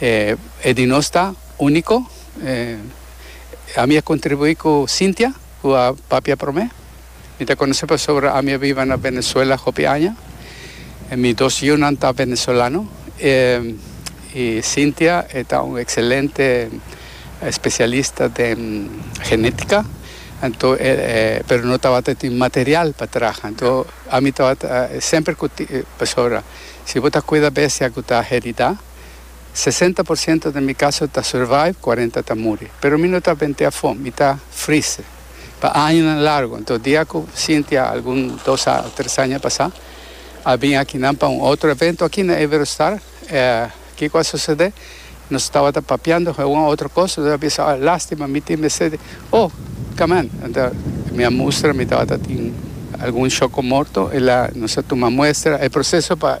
E di nos ta úniko. Ami a kontribuí ku Cynthia ku a papia promé. Mi ta konosé pasobra ami a biba na Venezuela hopi aña. Mi dos yunan ta venezolano i Cynthia e ta un ekselente spesialista den genétika anto pero no tabata tin material pa traha anto ami tabata semper ku pasobra si bo ta kuida bestia ku ta heridá. Sesenta por siento den mi kaso ta survive, kuarenta ta muri. Pero mi no ta bent'é afó, mi ta friste pa añanan largu. Anto dia ku Cynthia algun dos a tres aña pasá a bin akinan pa un otro evento aki na Iberostar, kiko a sosodé? Nos tabata papiando hua un otro kos, nos a bisa, oh, lástima, mi tin mester di, oh, kaman. Anto mi a mustra, mi tabata tin algun shoko morto, el a, nos a tuma muestra, e proseso pa.